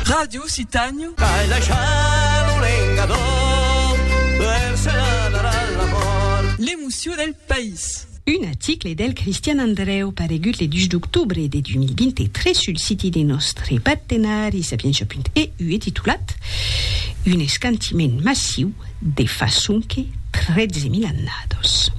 Ràdio Citanho. Ai la chalo lengadò per se n'anar a la mòrt. L'emocion del país. Un aticle del Cristian Andrèu paregut le 2 d'octobre de 2023 sul siti de nòstre partenari Sapientia.eu e titulat Un escantiment massiu de fa sonque 13.000 annados.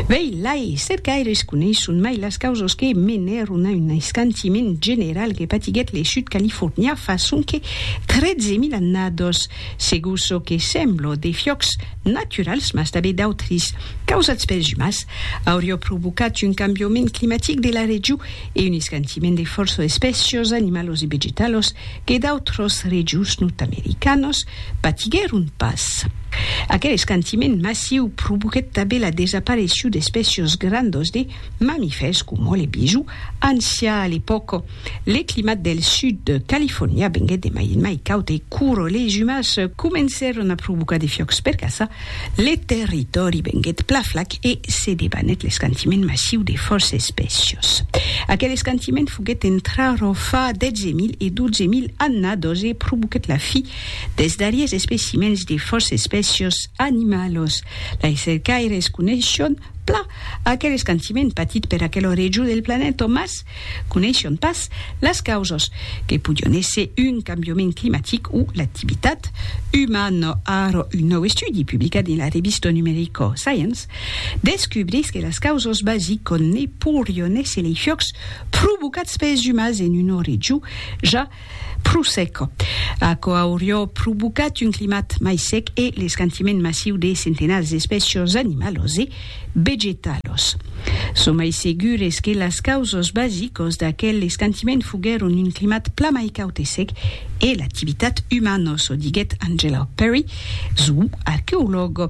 Vei lai, cercaires coneisson mai las causas que menèron a un aiscantiment general que patiguèt le Sud Californià fa sonque 13.000 annados. Segur çò que sembla de fiòcs naturals, mas tanben d'autris, causats pels umans, auriá provocat un cambiament climatic de la region, e un escantiment de fòrça espècias animalas e vegetalas que d'autras regions nòrd-americanas patiguèron pas. Aquel escantiment massiu provoquèt tanben la desaparecíu d'espècias grandas de mamifèrs coma le bisó ancian a l'epòca. Le climat del sud de Califòrnia venguèt de mai en mai caud e quora les umans comencèron a provocar de fiòcs per caçar, Le territòri venguèt pla flac e se debanèt l'escantiment massiu de fòrça espècios. Aquel escantiment foguèt entra ro fa 10.000 e 12.000 annadors e provoquèt la fi dels darriers especimèns de fòrça espècios animalos. Lei cercaires coneishon Plan, aquel escantiment patit per aquel orejor del planeta, mas coneishion pas las causas, que podion èsser un cambiament climatic o l'activitat umana. Ara, un nòu estudi publicat dins la revista numerica Science descubrís que las causas basicas ne porion èsser lei fiocs provocats pels umans en un orejor ja Pro sec. Aquò aurió provocat un climat mai sec e l'escantiment massiu de centenats d'espècios animalos e vegetalos. Son mai segures que las causos basicos d'aquel escantiment foguèron un climat plan mai caut e sec e l'activitat umanos, o diguèt Angela Perry, zooarqueològ.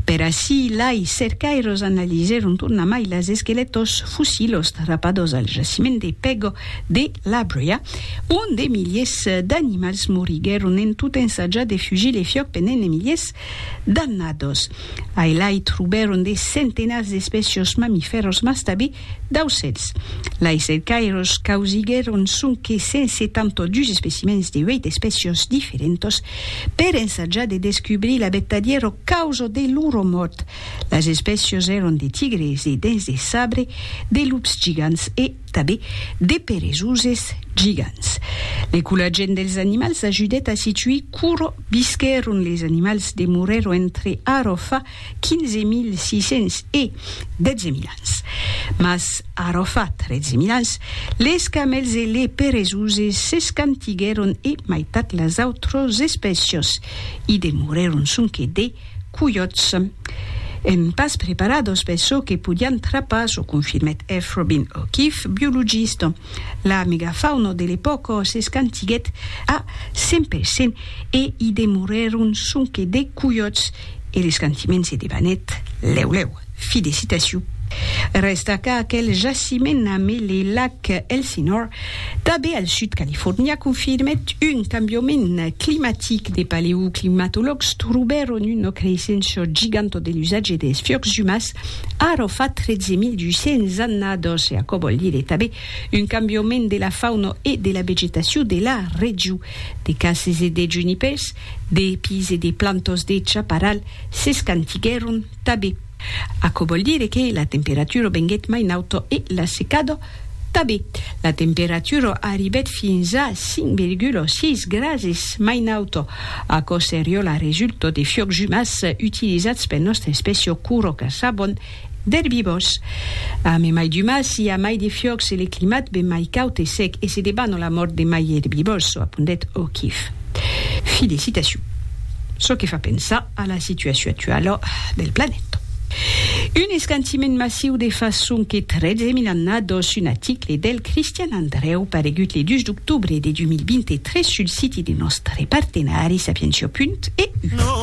Per ací, lai, cercaires analizèron tornamai las esquelètos fossilos trapados al jaciment de Pego, de la Bròia, ont de miliers d'animals moriguèron en tot ensatjar de fugir le fiòc pendent de miliers d'annados. Ailai trobèron de centenats d'espècias mamifèras mas tanben d'aucèls. Lai cercaires causiguèron sonque 172 especimèns de 8 espècias diferentas per ensatjar de descubrir la vertadièra causa de lor mòrt. Las espècias èran de tigres, de dens de sabre, de lups gigants e Tanben de peresoses gigants. L'ecolagent dels animals ajudèt a situir quora visquèron les animals demorèron entre ara fa 15.600 e 12.000 ans. Mas ara fa 13.000 ans, les camèls e les peresoses s'escantiguèron e maitat las autras espècias i demorèron sonque de Coiòts! Èm pas preparados per çò que podián trapar, çò confirmèt eth Robin O'Keefe, biologista. La megafauna de l'epòca s'escantiguèt a 100 per cent e i demorèron sonque de coiòts e l'escantiment se debanèt lèu lèu. Fi de citacion. Rèsta qu'aquel jaciment amb le lac Elsinore, tanben al sud California, confirmèt un cambiament climatic. De paleoclimatològs trobèron una creissença giganta de l'usatge dels fiucs umans ara fa 13.200 annadas e aquò vòl dire tanben un cambiament de la fauna e de la vegetacion de la region. De cases e de junipèrs, de pis e de plantas de chaparral s'escantiguèron. Tabé. Aquò vòl dire que la temperatura venguèt mai nauta e la secada tabé. La temperatura arribèt fins a 5,6 grases mai nauta. Aquò seriá la resulta de fiòcs umans utilizats per nòstra espècia cura caçavon d'erbivòrs. Amb mai d'umans i a mai de fiòcs e le climat ven mai caud e sec e se debana la mòrt de mai erbivòrs, apondèt O'Keefe. Fi de citacion. Çò que fa pensar. a la situacion actuala del planeta. Un escantiment massiu de façon que 13 mil annados, un aticle del Cristian Andreu paregut le 2 d'octobre de 2023 sul siti de nòstre partenari Sapientia. Punt. Eu.